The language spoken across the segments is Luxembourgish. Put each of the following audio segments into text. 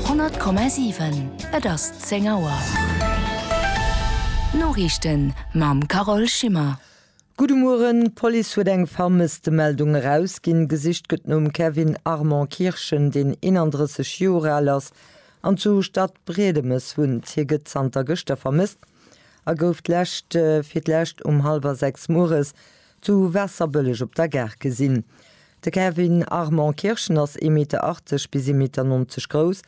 100,7 Et ass 10 Auer. D'Noriichten mam Carole Schimmer. Gudde Mueren, d'Police huet eng Vermësstemeldung erausginn. Gesicht gëtt nom Kevin Armand Kirschen, deen 31 Joer al ass an zu Stadbriedemes wunnt. Hie gëtt zanter gëschter vermësst a gouf d'lescht fir d'lescht um hallwer 6 mueres Zu Waasserbëlleg op der Gare gesinn. De Kevin Armand Kirschen ass ee Meter 80 bis ee Meter 90 grouss,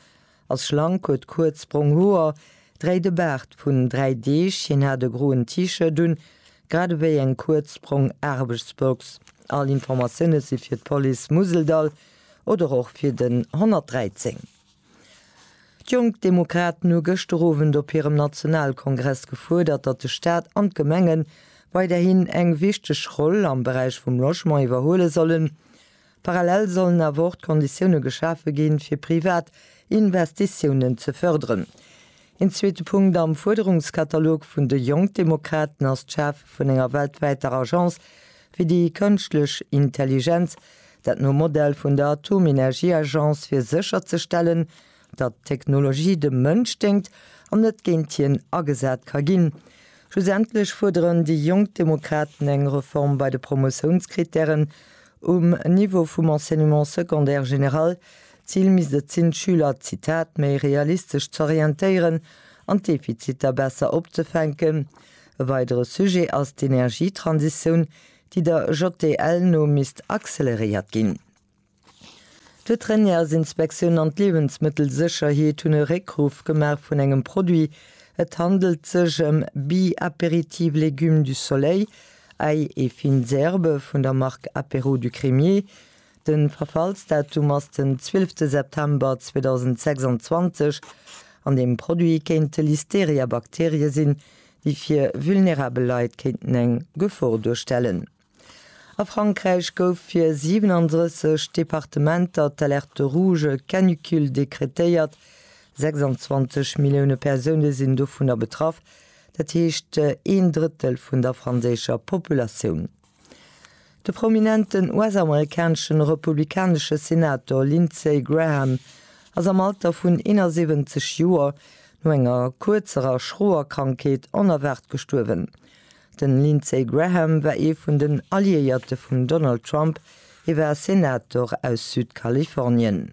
ass schlank, huet kuerz brong Hoer, dréit e Baart vun dräi Deeg, hien hat e groen T-Shirt un, grad ewéi eng kuerz brong Aarbechtsbox. All Informatioune si fir d'Police Museldall oder och fir den 113. D'Jonk Demokraten hu gëschter Owend op hirem Nationalkongress gefuerdert, datt de Staat an d'Gemengen weiderhin eng wichteg Roll am Beräich vum Logement iwwerhuele sollen. Parallel sollen awer och d'Konditioune geschafe ginn, fir privat Investitiounen ze fërderen. Een zweete Punkt am Fuerderungskatalog vun de Jonk Demokraten ass d'Schafe vun enger weltwäiter Agence fir déi kënschtlech Intelligenz, dat nom Modell vun der Atomenergieagence, fir sécherzestellen, datt d'Technologie dem Mënsch déngt an net géint hien agesat ka ginn. Schlussendlech fuerderen déi Jonk Demokraten eng Reform bei de Promotiounskrittären, Um Niveau vum Enseignement secondaire général, d'Zil misst et sinn, d'Schüler, Zitat, méi realistesch z'orientéieren an d'Defiziter besser opzefänken. E weidere Sujet ass d'Energietransitioun, déi der JDL no misst acceleréiert ginn. D'Veterinärsinspektioun an d'Liewensmëttelsécherheet hunn e Réckruff gemaach vun engem Produit. Et handelt sech ëm Bi-Apéritif Légumes du Soleil, Äi e fin Zerbe vun der Mark Apéro du Crémier. Den Verfallsdatum ass den 12 September 2026 an den Produit kéinte Listeria Bakterie sin déi fir vulnerabel Leit kéinten eng Gefor duerstellen. A Frankräich gouf fir 37 Departementer d'Alerte Rouge Canicule dekretéiert, 26 Millioune Persoune sinn dovunner betraff. Dat heescht een Drëttel vun der franséischer Populatioun. De prominenten US-amerikaneschen republikanesche Senator Lindsey Graham ass am Alter vun 71 Joer no enger kuerzer a schroer Krankheet onerwaart gestuerwen. Den Lindsey Graham war ee vun den Alliéierte vum Donald Trump, hie war Senator aus Südkalifornien.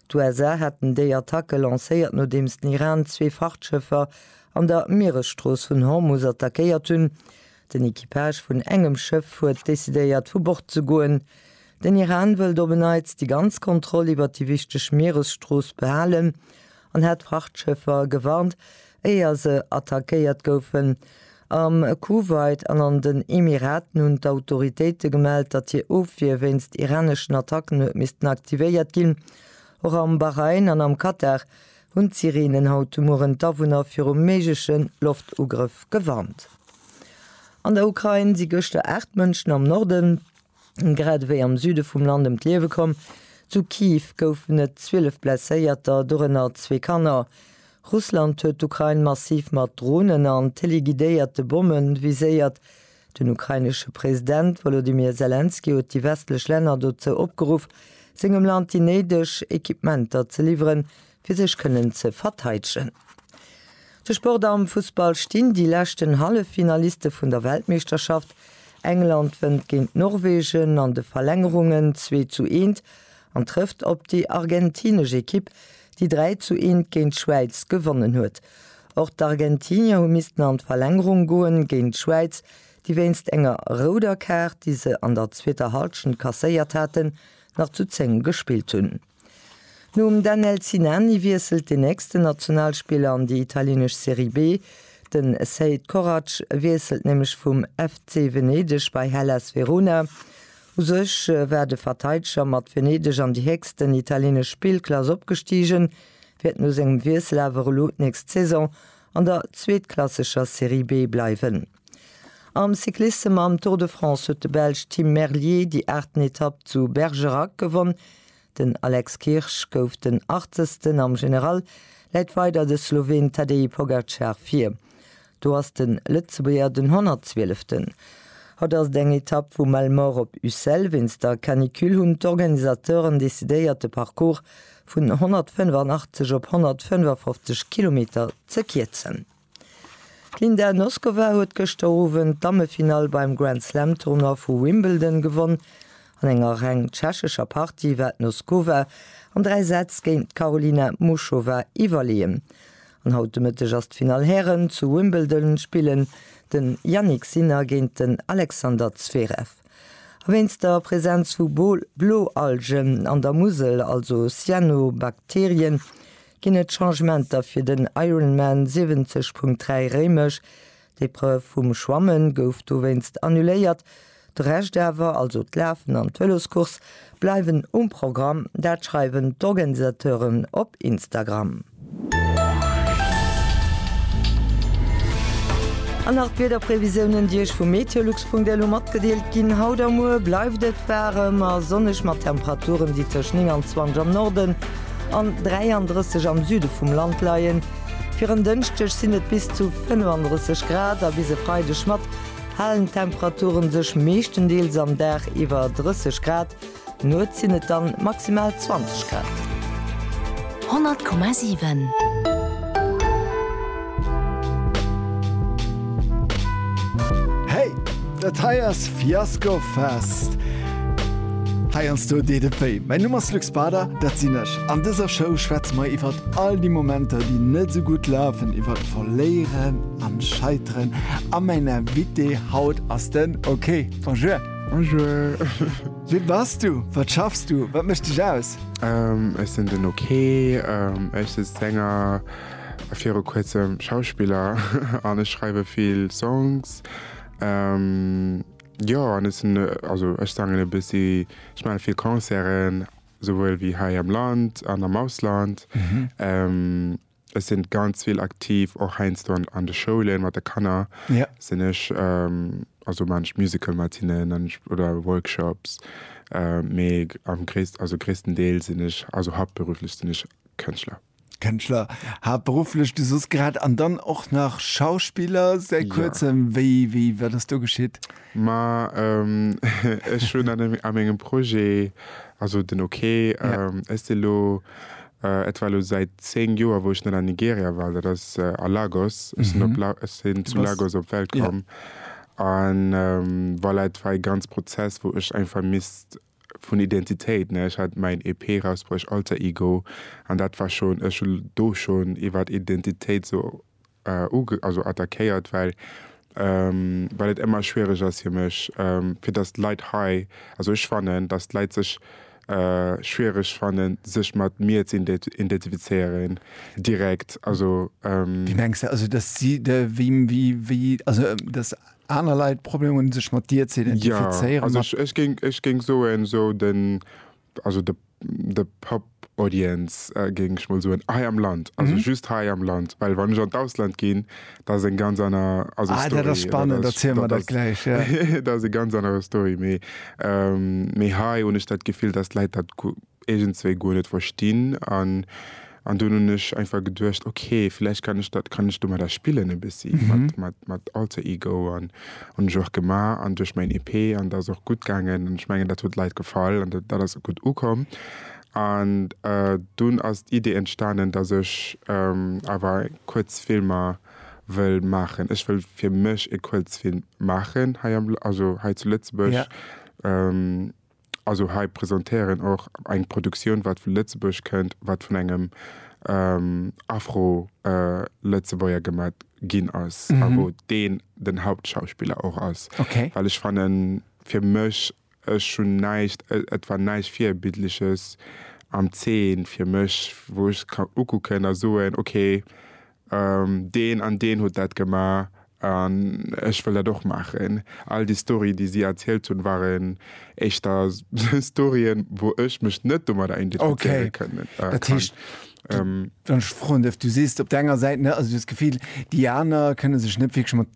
D'USA haten déi Attacke lancéiert, nodeems den Iran zwee Frachtschëffer an der Mieresstrooss vun Hormus attackéiert hunn. Den Equipage vun engem Schëff huet decidéiert, vu Bord ze goen. Den Iran wëllt op en Neits déi ganz Kontroll iwwert déi wichteg Mieresstrooss behalen an hat d'Frachtschëffer gewarnt, Éier se attackéiert goufen am Kuwait an an den Emiraten, hunn d'Autoritéite gemellt, datt hir Ofwier wéinst iraneschen Attacken huet missten aktivéiert ginn. Och am Bahrain an am Katar hunn d'Sireenen haut de Mueren d'Awunner viru méigleche Loftugrëff gewarnt. An der Ukrain si gëschter 8 Mënschen am Norden grad ewéi am Süde vum Land ëm d'Liewe komm. Zu Kyiv goufen et 12 Blesséierter, dorënner zwee Kanner. Russland huet d'Ukrain massiv mat Dronen an teleguidéierte Bomme viséiert. Den ukrainesche President Wolodymyr Selenskyj huet déi westlech Länner dozou opgeruff, sengem Land déi néideg Equipementer ze liwweren, fir sech kënnen ze verteidegen. De Sport am Fussball stinn déi leschten Halleffinaliste vun der Weltmeeschterschaft. England wënnt géint Norwegen an de Verlängerungen 2 zu 1 an trëfft op déi argentinesch Ekipp, déi 3 zu 1 géint d'Schwäiz gewonnen huet. Och d'Argentinier hu missten an d'Verlängerung goen géint d'Schwäiz, déi wéinst enger rouder Kaart, déi se an der zweeter Hallschent kasséiert haten, nach zu 10 gespillt hunn. Nom Daniel Sinani wiesselt den nächsten Nationalspiller an déi italienesch Serie B. De Sead Koracz wiesselt nämlech vum FC Venedeg bei Hellas Verona. U sech war de Verteideger mat Venedeg an déi héchsten italienesch Spillklass opgestigen, wäert no sengem Wiessel awer elo d'nächst Saison an der zweetklasseger Serie B bleiwen. Am Cyclissem mam Tour de France huet de Belsch Tim Merlier déi aachten Etapp zu Bergerac gewonn. Den Alex Kirsch gouf den Achtzegsten. Am General läit weider de Sloween Tadej Pogacar vir. Do ass de Lëtzebuerger den Honnertzwieleften. Haut ass et eng Etapp vu Malemort op Ussel. Wéinst der Canicule hunn d'Organisateuren decidéiert de Parcours vun 185 op 155 Kilometer ze kierzen. D'Linda Noskova huet gëschter Owend d'Dammefinall beim Grand-Slam-Tournoi vu Wimbledon gewonn. An enger reng tschechescher Partie war d'Noskova an dräi Sätz géint d'Karolina Muchova iwwerleeën. An haut de Mëtteg ass d'Finall Hären zu Wimbledon, spillen den Jannik Sinner géint den Alexander Zverev. A wéinst der Presenz vu Bloalgen an der Musel, also Cyanobakterien, Ginn et Changementer fir den Ironman 70.3 Réimech? D'Epreuve vum Schwamme gouf dowéinst annuléiert. De Rescht awer, also d'Lafen an d'Vëloscourse, bleiwen um Programm. Dat schreiwen d'Organisateuren op Instagram. An nach d'Wiederprevisiounen, déi Iech vu meteolux.lu matgedeelt ginn. Haut a muer bleift et waarem a sonneg mat Temperaturen, déi tëscht 29 am Norden, an 33 am Süde vum Land leien. Fir en Dënschdeg sinn et bis zu 35 Grad a bis e Freideg mat halen Temperature sech meeschtendeels am Dag iwwer 30 Grad. Nuets sinn et dann maximal 20 Grad. 100,7. Hey! Dat hei ass Fiasco Fest! Heiansdo deet et wéi. Mäin Numm ass Luc Bader, dat sinn ech. An dëser Show schwätze mer iwwer all déi Momenter, déi net esou gutt lafen, iwwer Verléieren an Scheiteren. A mäin Invité haut ass den OK. Bonjour! Bonjour! Wie bass du? Wat schaffs du? Wat mécht dech aus? Ech sinn den OK. Ech si Sänger. Viru kuerzem Schauspiller an ech schreiwe vill Songs. Jo an ech sinn, also ech sangen e bëssi, ech maache vill Concerten, souwuel wéi hei am Land an am Ausland. Ech sinn ganz vill aktiv och heiansdo an de Schoulen mat de Kanner sinn ech, also maan ech Musical mat hinnen an ech oder Workshops, mee am gréissten, also gréisstendeels sinn ech, also haaptberuflech sinn ech Kënschtler. Kënschtler, haaptberufflech du soss grad, an dann och nach Schauspiller säit ja. kuerzem. Wéi, wéi, wat ass do geschitt? Ma ähm, ech hunn an, an engem Projet, also den OK, ja. ähm, ëst elo Äh, et war lo säit 10 Joer, wou ech net an Nigeria war, dat ass äh, a Lagos. Ech sinn, mhm. La sinn zu Lagos op Welt komm. Ja. An ähm, voilà, et war e ganz Prozess, wou ech einfach misst vun Identitéit, ne, ech hat mäin EP rausbruecht, Alter Ego, an dat war schonn, ech hu do schonn iwwert Identitéit sou uge, also attackéiert, well well et ëmmer schwiereg ass fir mech, fir datt d'Leit hei, also ech fannen, datt d'Leit sech schwiereg fannen, sech mat mir ze identifizéieren direkt, also. Wéi mengs de, also datt si, wéi, wéi, also datt. Aner Leit probéieren sech mat dir ze identifizéieren. Ja, also ech, ech, ech géing soen esou den, also de, de Pop Audience äh, géing ech mol soen, hei am Land, also mhm. just hei am Land, well wann ech an d'Ausland ginn, da ass eng ganz aner also ah, Story. Dat ass spannend, dat ziel mer dat gläich. Ja. dat ass e ganz aner Story, méi ähm, méi hei hunn ech dat Gefill, datt d'Läit dat iergendswéi guer net verstinn an an dunn hunn ech einfach geduecht ok villäicht kann ech dat kann ech domadder spillen e bëssi mat mat mat Alter Ego an hunn ech och gemaach an duerch mäin EP an dat ass och gutt gaangen an ech mengen dat huet Leit gefall an dat dat ass gutt ukomm an dunn ass d'Idee entstanen dass ech awer kuerz Filmer wëll maachen. Ech wëll fir mech e Kuerzfilm maachen hei am also hei zu Lëtzebuerg. Also hei presentéieren och eng Produktioun wat vu Lëtzebuerg kënnt, wat vun engem Afro-Lëtzebuerger gemat ginn ass a wou deen den Hauptschauspiller och ass. Well ech fannen, fir mech, ech hunn näischt, et war näischt Virbildleches am Zeen fir mech, wou ech ka ukucken a soen, okay, deen an deen huet dat gemaach an ech wëll dat och maachen. All déi Storyen, déi si erzielt hunn, waren éischter Storyen, wou ech mech net domadder identifizéiere kann. Okay, dat heescht, wann ech froen dierf, du sees op der enger Säit, also du hues d'Gefill, déi aner kënne sech net wierklech mat.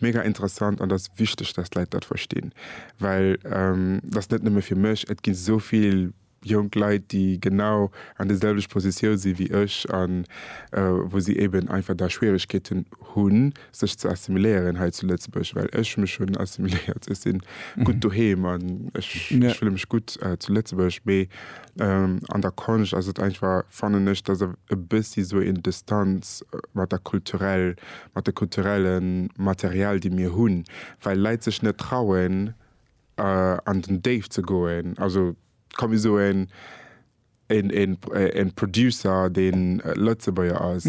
Mega interessant an dass wichteg dass d'Leit dat verstinn, well dass net nëmme fir mech, et ginn esou vill jonk Leit déi genau an de selwecht Positioun sinn wéi ech an wou si eben einfach da Schwieregkeeten hunn sech ze assimiléieren hei zu Lëtzebuerg, well ech mech hunn assimiléiert, ech sinn gutt doheem an ech fille mech gutt zu Lëtzebuerg, mee. An der Konscht ass et einfach, fannen ech, dass e bëssi esou een Distanz mat der kulturell, mat de kulturelle Material, déi mir hunn, well Leit sech net trauen, an den Déift ze goen. Also, komm mir soen, e Producer, dee Lëtzebuerger ass,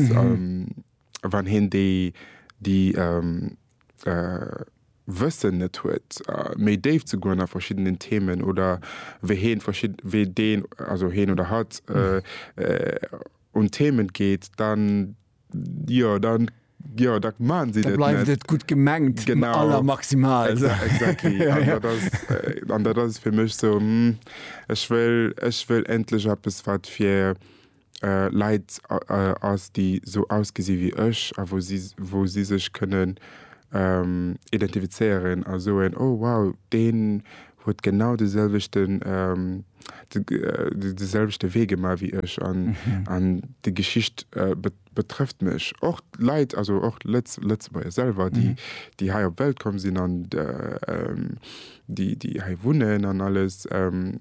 wann hien déi déi Wëssen net huet méi déif ze goen a verschiddenen Themen oder wéi hien verschidde wéi deen also hien oder hatt un d'Themen geet dann jo dann jo da maachen si dat net. Da bleift et gutt gemengt aller maximal. Genau exactly an dat ass an dat ass et fir mech sou ech wëll ech wëll endlech eppes wat fir Leit ass déi esou ausgesi wéi ech a wou si wou si sech kënnen identifizéieren a soen, oh wow deen huet genau de selwechten de selwechte Wee gemaach wéi ech an an déi Geschicht betrëfft mech. Och Leit, also och Lëtz Lëtzebuerger selwer déi déi hei op d'Welt komm sinn an déi déi hei wunnen an alles,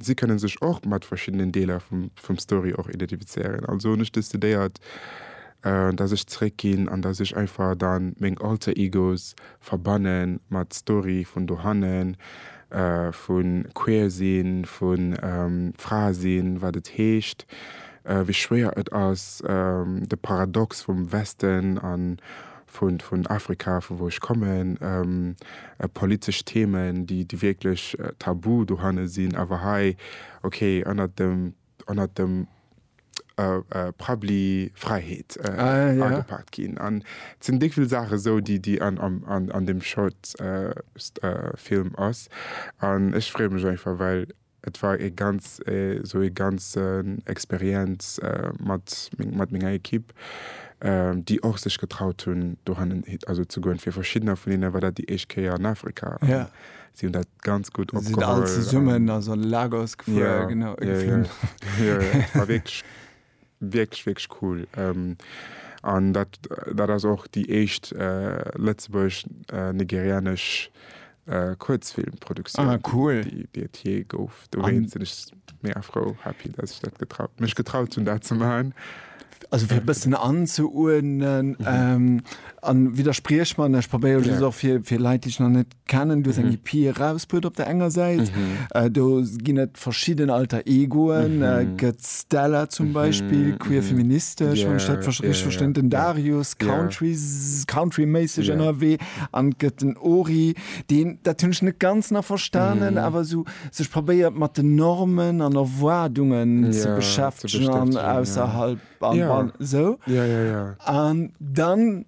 si kënne sech och mat verschiddenen Deeler vum vum Story och identifizéieren. Also hunn ech decidéiert, datt ech zeréckginn an datt ech einfach da meng Alter Egos verbanne mat Story vun dohannen, vu queer sinn, vu Fra sinn, wat et heescht, wéi schwéier et ass, de Paradox vum Westen an vun Afrika, vu wou ech kommen, politesch Themen, déi wierklech tabu dohanne sinn, awer hei, okay, ënnert dem, ënnert dem Parapluie Fräiheet agepaakt ginn. An et sinn déck vill Saache sou, déi, déi an deem Short Film ass. An ech freeë mech einfach, well Et war ee ganz, esou ee ganzen Experienz mat mat menger Equipe, déi och sech getraut hunn dohannen, also ze goen. Fir verschiddener vun hinnen war dat déi éischt Kéier an Afrika. Jo. Si hunn dat ganz gutt opgeholl. Si sinn all zesummen, also an de Lagos gefuer, genau, geflunn. Jo, jo, jo, et war wierklech. Wierklech wierklech cool an dat dat ass och déi éischt lëtzebuergesch-nigerianesch Kuerzfilmproduktioun déi et jee gouf. Dowéint sinn ech mega frou happy dat ech dat mech getraut hunn dat ze maachen. Also fir e bëssen anzeuerdnen an widderspriech mer, ech probéiere just och fir Leit déi ech nach net. kennen do seng EP erausbruet op der enger Säit do ginn et verschidden Alter Egoen gëtt Stella zum Beispill queer feministesch wann ech dat richteg verstinn den Darius Country Country méisseg ënnerwee an et gëtt den Ori deen dat hunn ech net ganz nach verstanen awer esou sech probéiert mat den Normen an Erwaardungen ze beschäftegen an ausserhalb an esou an dann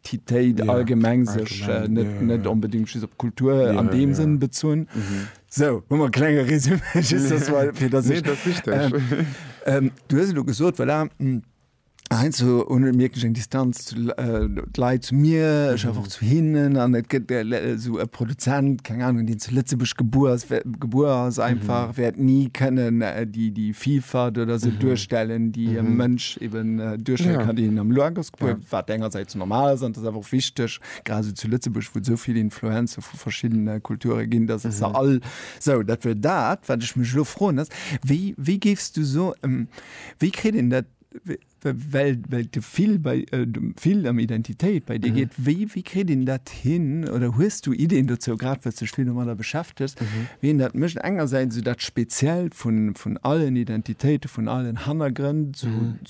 Identitéit allgemeng, sech net onbedéngt just op d'Kultur an deem Sënn bezunn. Sou, hu mer e klenge Résumé, just dass mer, fir dass ech. Nee, dat ass wichteg. Du hues elo gesot, voilà, heiansdo hunn ech, mierken ech eng Distanz zu d'Leit zu mir, ech awer och zu hinnen an et gëtt esou e Produzent, keng Anung, deen zu Lëtzebuerg gebuer ass, gebuer ass einfach, wäert ni kënnen déi Vielfalt oder esou duerstellen, déi e Mënsch eben duerstelle kann, deen am Luxembourg. Ja. Wat engersäits normal ass an dat awer och wichteg, grad sou zu Lëtzebuerg, wou et esou vill Influencer vu verschiddene Kulture ginn, dass et se mhm. all sou dat wier dat, wat ech mech lo froen ass, wéi, wéi géifs du so ähm, wéi kritt en dat well well de vill bei äh, vill am Identitéit bei dir mhm. geet, wéi wéi kritt en dat hin oder huest du Ideen dozou grad wat sech vill mat der beschäftigst, mhm. wien dat mëcht engersäits so dat speziell vun vun allen Identitéite, vun allen Hannergrënn zu mhm.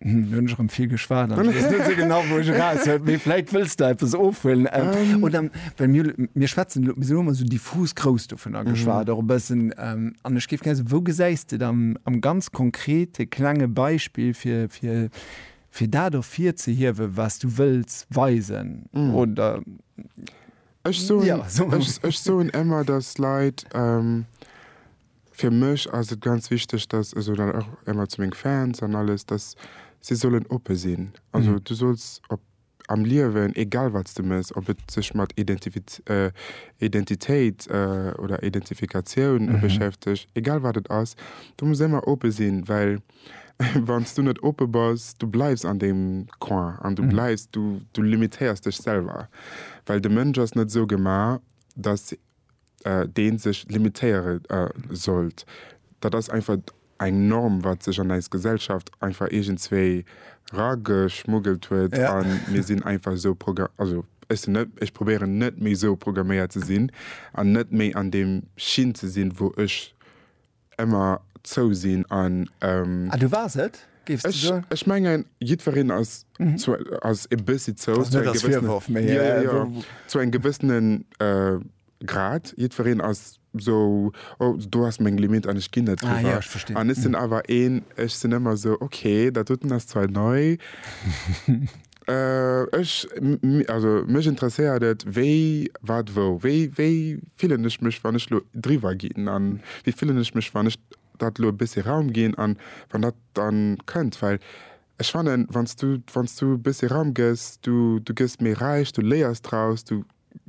Hm, erem vill geschwaart genau wo méiläit wëst du epes ofhuelen ähm, ähm. oder well mir mir schwätzen immer so diffus grouss du vun a geschwaart mhm. bessen ähm, an ech gif ge wou gesäist du am am ganz konkrete klenge Beispiel fir fir fir dat of fir ze hiewe was du wëlls weisen mhm. oder Ech so, ja, so. Ech, ech so emmer dat Leiit ähm, Fir mech ass et ganz wichteg, dass, also dann och émmer zu meng Fans an alles, dass si sollen oppe sinn. Also du solls op am Liewen, egal wat s de méchs, ob et sech mat Identifit, Identitéit oder Identifikatioun beschäfteg, egal wat et ass, du muss émmer oppe sinn, well wann s du net oppe bass, du bleifs an deem Coin an du bleifs, du limitéiers dech selwer, well de Mënsch ass net esou gemaach, dass dee sech limitéiere sollt. Dat ass einfach eng Norm, wat sech an eis Gesellschaft einfach iergendzwéi rageschmuggelt huet a mir sinn einfach esou progra-, also ech sinn net, ech probéieren net méi esou programméiert ze sinn an net méi an deem Schinn ze sinn, wou ech. Emmer zou sinn an. Ah, du wars et, géifs du soen? Ech mengen, jiddwereen ass ass e bëssi zou. Ass net als Virworf, mee. Jo, jo, jo, zu engem gewëssene Grad. Jiddwereen ass sou, Oh, do ass meng Limitt an ech ginn net driwwer. Ah, jo, ech verstinn. An ech sinn awer een, ech sinn ëmmer sou, Okay, dat doten ass zwar nei. Ech, also mech interesséiert et, wéi, wat, wou. Wéi, wéi fillen ech mech, wann ech elo driwwer ginn? A wéi fillen ech mech, wann ech dat elo e bëssche Raum ginn an wann dat dann kënnt? Well ech fannen, wann s du, wann s du e bëssche Raum gëss, du, du gëss méi räich, du léiers draus, du,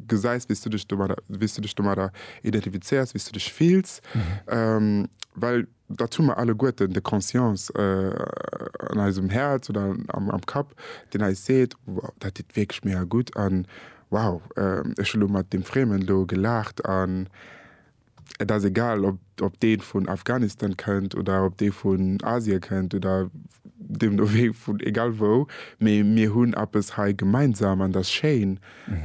gesäis, wéi s du dech domadder, wéi s du dech domadder identifizéiers, wéi s du dech fills, well dat hu mer alleguerten, de Conscience an eisem Häerz oder am Kapp, deen eis seet, wow, dat deet wierklech mega gutt an wow, ech hu lo mat deem Friemen do gelaacht an Et ass egal, ob, ob dee vun Afghanistan kënnt oder ob dee vun Asien kënnt oder deemno wéi vun egal wou, mee mir hunn eppes hei gemeinsam an dat ass schéin.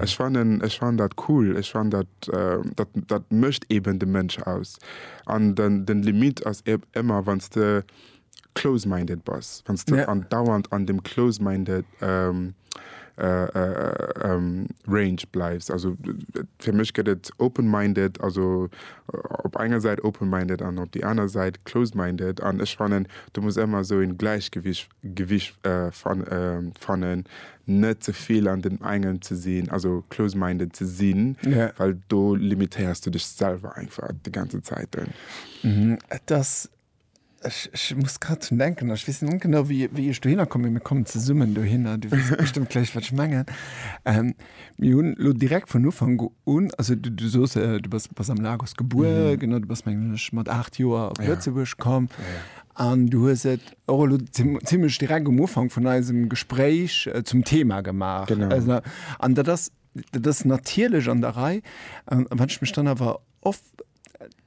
Ech fannen, ech fannen dat cool. Ech fannen dat, dat, dat mécht eeben de Mënsch aus. An den, den Limit ass ëmmer, wann s de Close minded bass, wanns du andauernd an dem close minded range bleifs. Also fir mech gëtt et open minded, also op enger Säit open minded an op déi aner Säit close minded. An ech fannen do muss ëmmer esou en Gläichgewicht fannen, net ze vill an dem engem ze sinn, also close minded ze sinn, well do limitéiers du dech selwer einfach déi ganzen Zäiten. Ech, ech muss grad drun denken, ech weess net genau, wéi, wéi ech dohinner komm, mee mir kommen zesummen dohinner, du weess bestëmmt gläich, wat ech mengen. Ähm, mir hunn lo direkt vun Ufank un, also du, du soos, äh, du bass, bass am Lagos gebuer, mhm. genau, du bass, mengen ech, mat 8 Joer op Lëtzebuerg ja. komm. Ja, ja. An du hues et och elo ziemlech direkt um Ufank vun eisem Gespréich äh, zum Thema gemaach. Genau. Also, an dat ass, dat ass natierlech an der Rei. An wann ech mech dann awer oft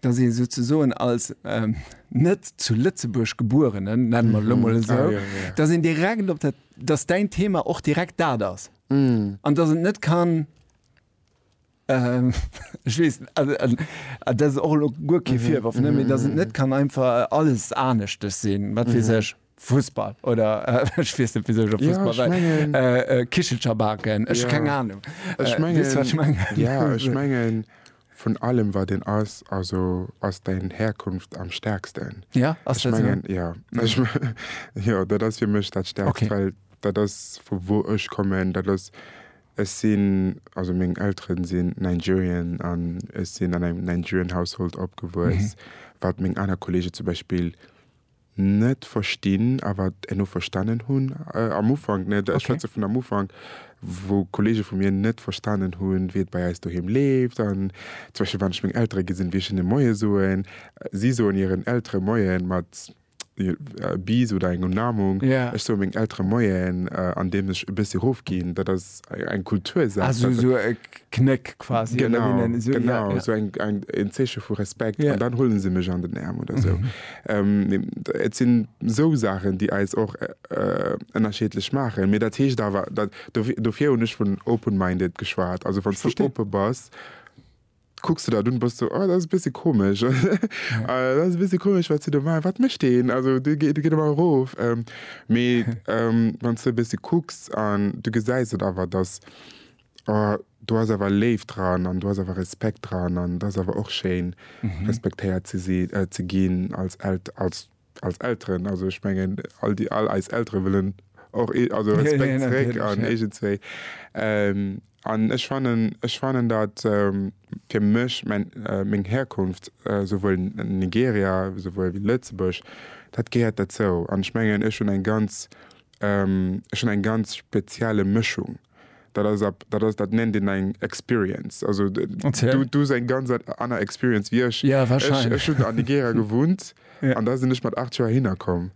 dass ee souzesoen als ähm, net zu Lëtzebuerg Gebuerenen, nennen wir lo mol esou, Ah, ja, ja. dass een direkt op dat, dass dein Thema och direkt dat ass. Mm. An dass et net kann ähm, ich weiß, also, also, also, das ist auch lo guer kee Virwurf, ne, mais dass et net kann einfach alles Aneschtes sinn, wat weess ech. Fussball oder ech weess net wisou ech op Fussball well. Ja ech mengen. Kichelcher baken, ech keng Ahnung. Ech mengen. Weess wat ech mengen? Ja ech mengen vun allem wat een ass, also ass däin Herkunft am stärksten. Ja ass dat sou? Ja ech mengen jo dat ass fir mech dat stärkst. Okay. Well dat ass vu wou ech kommen, dat ass ech sinn also meng Elteren sinn Nigerian an ech sinn an engem Nigerian Household opgewuess. Wat meng aner Kollegen zum Beispill. net verstinn, awer herno verstanen hunn, am Ufank net, ech schwätze vun am Ufank, wou Kollege vu mir net verstanen hunn, wéi et bei eis doheem leeft. An zum Beispill, wann ech meng Eltere gesinn, wéi ech hinne Moie soen, si soen hiren Eltere Moien mat Bis oder engem Umarmung, ech soe mengen Eltere Moien, andeems ech e bëssi erofginn. Dat ass eng Kultursaach. Knéck quasi. Genau, genau, esou eng, eng, en Zeeche vu Respekt. Yeah. An dann huelen se mech an den Äerm oder esou. ähm, et sinn esou Saachen, déi eis och ënnerschiedlech äh, maachen. Mee dat heescht awer, dat, dofir hunn ech vun open-minded geschwat. Also wann du oppe bass, kucks du dat un, bass du, oh, dat ass e bësse komesch. Ja. Äh, dat ass e bësse komesch, wat se do maachen. Wat mécht deen? Also de geet, de geet ëmmer erof. Ähm, mee ähm, wann du e bësse kucks an du gesäis et awer, dass Oh, do ass awer Léift dran an do ass awer Respekt dran an et ass awer och schéin, respektéiert ze si, ze ginn als als als Elteren. Also ech mengen, all déi all eis Eltere wëllen och ee also Respekt zeréck an iergendzwéi. An ech fannen, ech fannen, datt fir mech mäin meng Herkunft, souwuel Nigeria souwuel wéi Lëtzebuerg, dat gehéiert derzou. An ech mengen, ech hunn eng ganz, ech hunn eng ganz spezielle Mëschung. Dat ass ab, dat ass, dat nennt een eng Experience. Also du du hues eng ganz aner Experience wéi ech. Ja, wahrscheinlech. Ech, ech hunn an Nigeria gewunnt an da sinn ech mat aacht Joer hinner komm.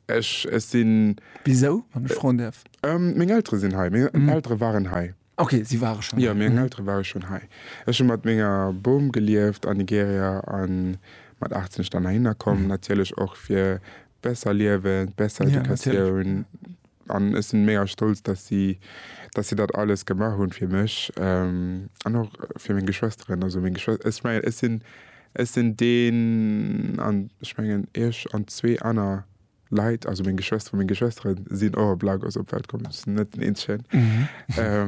Ech, ech sinn. Wisou, wann ech froen däerf? Meng Eltere sinn hei, meng Eltere waren hei. Okay, si ware schonn hei. Jo, meng Eltere ware schonn hei. Ech hu mat menger Bom gelieft an Nigeria a mat aacht sinn ech dann heihinner komm, natierlech och fir besser Liewen, besser Educatioun. An ech sinn mega stolz dass si dass si dat alles gemaach hunn fir mech an och fir meng Geschwesteren. Also meng Geschwes ech mengen ech sinn ech sinn deen an ech mengen iech an zwee aner Leit, also meng Geschwester, meng Geschwestere sinn och op Lagos op d'Welt komm. Ech sinn net den eenzegen.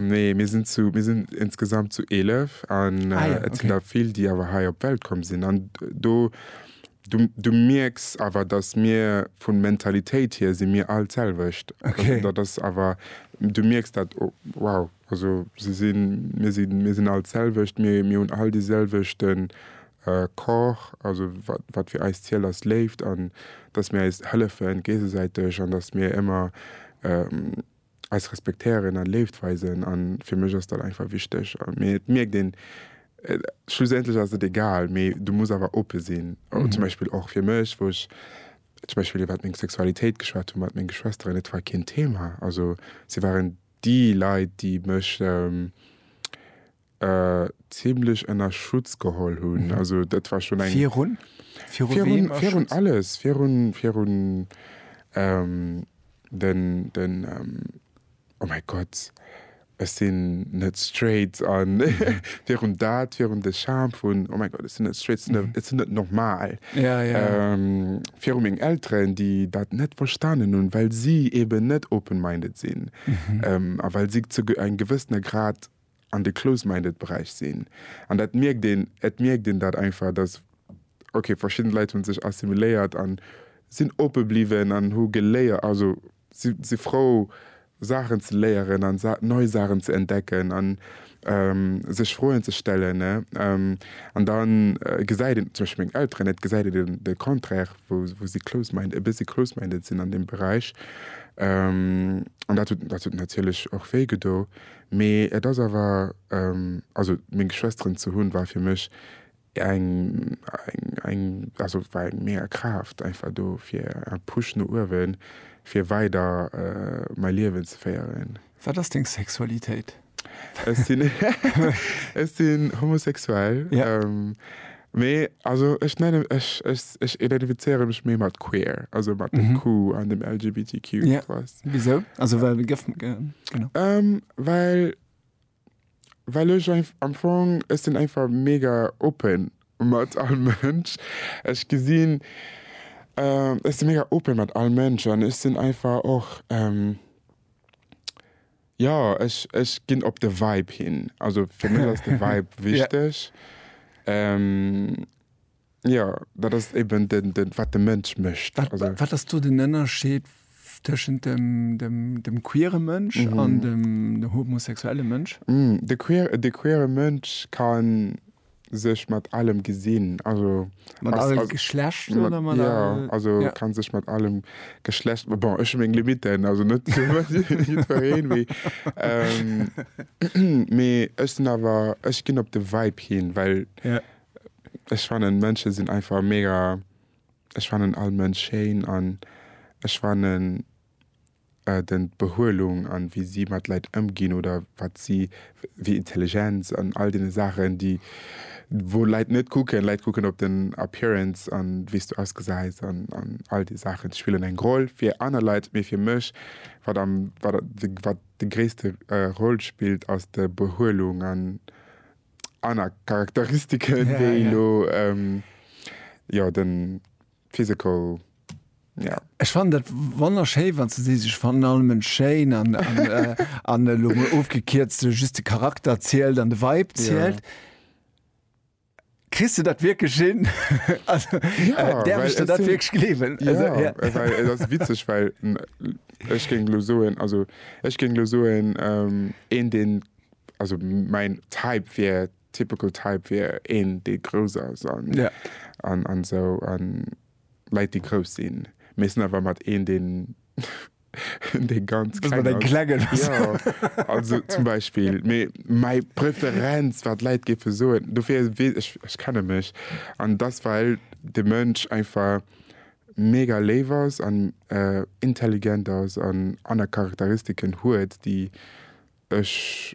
Nee mir sinn zu mir sinn insgesamt zu 11 an et sinn der vill déi awer hei op d'Welt komm sinn an do Du mierks awer, datt mir vu Mentalitéit hier si mir all d'selwecht. Dat ass awer, du mierks dat, wow, also se sinn, mir sinn, mir sinn all d'selwecht, mir hunn all dee selwechte Corps, also wat fir eis zielt ass Léift an datt mir eis hëllefe géigesäiteg an datt mir ëmmer, eis respektéieren a Léift weisen. A fir mech ass dat einfach wichteg. Mee et mierkt een, schlussendlech ass et egal, mee du muss awer oppe sinn. Zum Beispill och fir mech, wou ech zum Beispill iwwer meng Sexualitéit geschwat hu mat menge Schwesteren, et war keen Thema. Also si waren déi Leit, déi mech. Zimmlech ënner Schutz geholl hunn. Also dat war schonn eng. Virun? Virun wem? Virun, virun alles. Virun, virun ähm, den, den ähm, oh mäi Gott, ech sinn net straight an virun dat, virun de Charme vun, oh mäi Gott, ech sinn net straight, ech sinn net normal. Ja, ja. Ähm, virun meng Elteren, déi dat net verstanen hunn, well si eeben net open-minded sinn a well si zu eng gewëssener Grad. an de close-minded Beräich sinn an dat mierkt een, et mierkt een dat einfach, dass ok verschidden Leit hunn sech assimiléiert an sinn oppe bliwwen an hu geléiert, also si si frou Saachen ze léieren an Sa nei Saachen ze entdecken an sech Froen ze stellen an da gesäit een zum Beispill meng Elteren, et gesäit een den de Contraire wou wou si close-mind e bëssi close-minded sinn an deem Beräich an dat huet dat huet natierlech och wéi gedo Mee et ass awer, also meng Geschwesteren ze hunn, war fir mech eng, eng, also war eng mega Kraaft einfach do fir en Push no uewen, fir weider mäi Liewen ze féieren. Wat ass deng Sexualitéit? Ech sinn, ech sinn homosexuell. Mee also ech nennen, ech, ech, ech identifizéiere mech méi mat queer, also mat dem mhm. Q an dem LGBTQ. Ja. Wieso? Also well de gëff genau. Ähm, well well ech am Fong ech sinn einfach mega open mat all Mënsch. Ech gesinn ähm, ech sinn mega open mat all Mënsch an ech sinn einfach och ähm, Jo, ech, ech ginn op de Vibe hin. Also fir mech ass de Vibe wichteg. Jo, dat ass eben den, den, wat de Mënsch mécht. Wat, wat ass do den Ënnerscheed tëschent dem, dem, dem queere Mënsch an dem homosexuelle Mënsch? De queer, de queere Mënsch kann sech mat allem gesinn, also mat allem Geschlecht oder mat ja, allem, also ja. kann sech mat allem Geschlecht ma bon, ech meng Limiten, also net jiddwereen mee ähm, mee ech sinn awer ech ginn op de Vibe hin, well ja. ech fannen Mënsche sinn einfach mega ech fannen all Mënsch schéin an ech fannen den d'Behuelung an wéi si mat Leit ëmginn oder wat si wéi Intelligenz an all den Saachen déi wou Leit net kucken. Leit kucken op den Appearance an wéis du ausgesäis an an all déi Saachen spillen eng Roll fir aner Leit. Mee fir mech wat am wat de wat de gréisste Roll spillt ass de Behuelung an aner Charakteristiken wéi elo jo den. Physical, ja. Ech fannen dat wonnerschéi wann s de sees, ech fannen all Mënsch schéin an an elo mol ofgekierzt just de Charakter zielt an de Vibe zielt. Ja. Kriss de dat wierklech hin? Also däerf ech der dat wierklech gleewen? Jo, well et ass witzeg, well ech géing elo soen, also ech géing elo soen een deen, also mäin Type wier. Typical type wier een dee grouss ass an an esou an Leit déi grouss sinn mee sinn awer mat een deen dee ganz klengen ass also zum Beispill mee mäi Preferenz wat Leit géife soen dofir wee ech ech kenne mech an dass well de Mënsch einfach mega léif ass an intelligent ass an aner Charakteristiken huet déi ech.